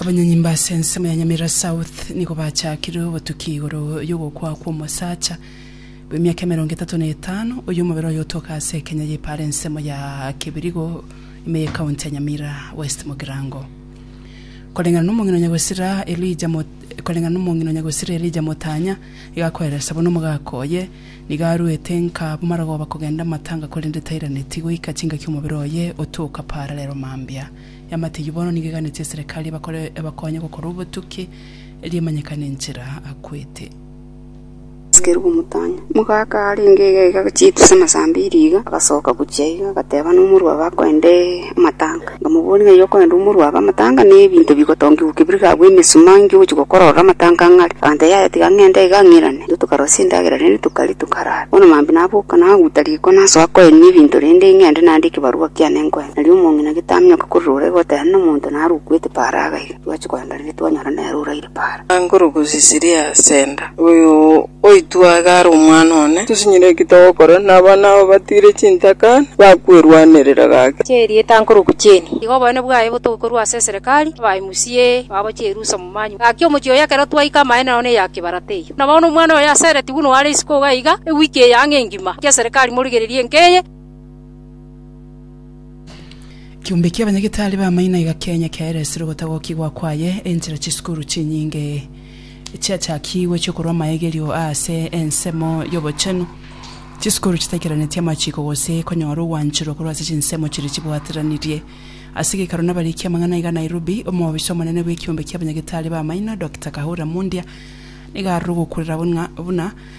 Abanyonyi mba ase ensemo ya Nyamira South nigo bachakire obotuki igoro y'ogokwa kw'omosacha bw'emiaka emerongo etato na etano oyo omobere oye otoka ase Kenya y'epara ensemo ya Kibirigo ime y'ekaunti ya Nyamira West Mugirango. Koreng'ana n'omong'ina Nyagosira Elijah Mot- koreng'ana n'omong'ina Nyagosira Elijah Motanya iga akoeresa buna omogaka oye Nigo aruete nka bomarogoba kogenda amatanga korende tairaneti goika chingaki omobere oye otoka pararero mambia. Eamate eyio bono nigo eganetie eserekari ebakore ebakonye gokora obotuki erio emanyekane enchera akwete. Abasikeri b'omotang'ani. Mogaka arenge egaiga agochia etuse amasaa ambiri iga, agasoka gochia iga, agateba nomorwabe akoende. amatanga, nkamobooria ng'a eyokorenda omorua abe amatanga na ebinto bigotongigwa kebirie gabwo emesuma inki ogochia gokorora amatanga ng'a are. Akantebia, Yaya tiga ng'ende iga ng'irane. Intwe tokarosia chindagera rende tokaria tokarara. Bono mambia naboka naguta riko nasoa koenia ebinto rende ng'ende nande ekebarua kiane nkoe. Nario omong'ina gete amenyoka korire oraiga oteba nomonto narwe okwete paraga iga. Twachia koendereri twanyora nere oraire para. Angoro gosisiria Asenda. Oyo oitwa iga are omwana one. Tosinyire ki togokora nabana aba batiire chintaka na bakwerwanerera gake. Chia erieta ankorokwa Jane. Iga obonene bwaye botokorwa ase eserekari, abae musie babo Jerusa momanyu. Gaki omochie oye ekero twaika amaene nao neya kibarata eyio. Nabono omwana oye asereti buna oare isiko iga, ewiki eye ang'e engima, gaki eserekari morigererie enka eye. Ekeombe ki'abanyagetari b'amaino egakenya kiaera esiro ogotagokigwa kwaye, enchera chisukuru chinyinge chiachakigwe chi'okorua amaegerio aase ensemo y'obochenu, chisukuru chitaikeranetie amachiko gose konyora ogwancherwa korwa ase chinsemo chiria chibwateranirie. Ase gekaro nabariki amang'ana iga Nairobi, omobisa omonene bw'ekeombe ki'abanyagetari b'amaino, Dokita Kahura Mundia, nigo aroro ogokurera buna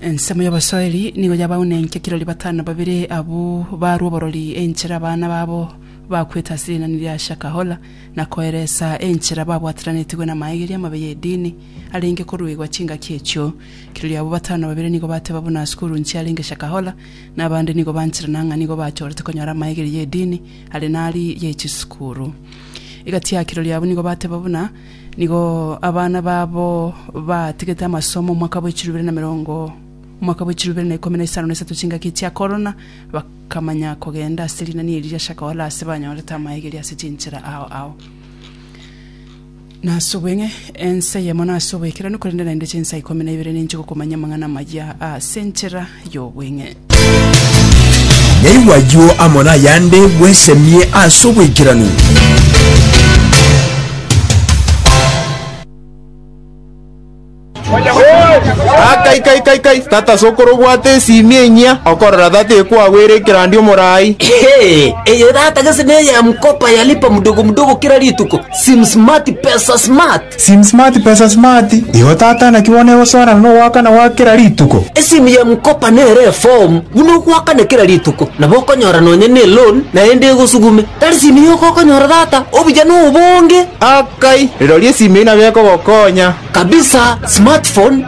Ensemo y'abasoeri nigo yabaunenkia kirori batano babere abwo barwa oborori enchera abana babo bakwete ase rinani ria Shakahola na koeresa enchera babwateranetigwe namaageria amabe y'edini arenge koruegwa chingaki echio. Kirori abwo batano babere nigo bateba buna Asukuru nchiarenge Shakahola na abande nigo bancherana ng'a nigo bachorete konyora amaegeria y'edini are nari ye chisukuru. Egati ya kirori abwo nigo bateba buna Nigo abana babo batigete amasomo omwaka bwe chilifu ibere na emerongo omwaka bwe chilifu ibere na ikomi na isano na isato chingaki chia korona, bakamanya kogenda ase rinani eri ria Shaka Hola ase banyorete amaegeri ase chinchera ao ao. Nase obweng'e, ense eyemo nase oboikeranu, korende naende chinsa ikomi na ibere ninchigokomanya amang'ana amaya ase enchera y'obweng'e. Yaigwa ayio amo nayande, bwesemie ase oboikeranu. Ah, kai kai kai kai tata sokoro obwate esimi enyia okorora tata ekwagwere ekerandi omorai Hey, eye data gese neye ya mkopa ya lipa mdogo mdogo kila rituko sim smart pesa smart Sim smart pesa smart igo tata naki bono egosoana nogoakana gwa kera rituko. Esimu ya M-kopa nere eform buna ogoakana kera rituko nabo okonyora nonya ne loan naende egosugume. Tari simu yoka okonyora tata, obuya nobonge. Akai, rirorio esimu eyio nabo ekogokonya. Kabisa, smartphone.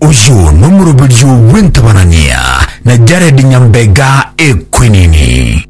Oyio nomoroberio bw'entabarania na Jared Nyambega Equinini.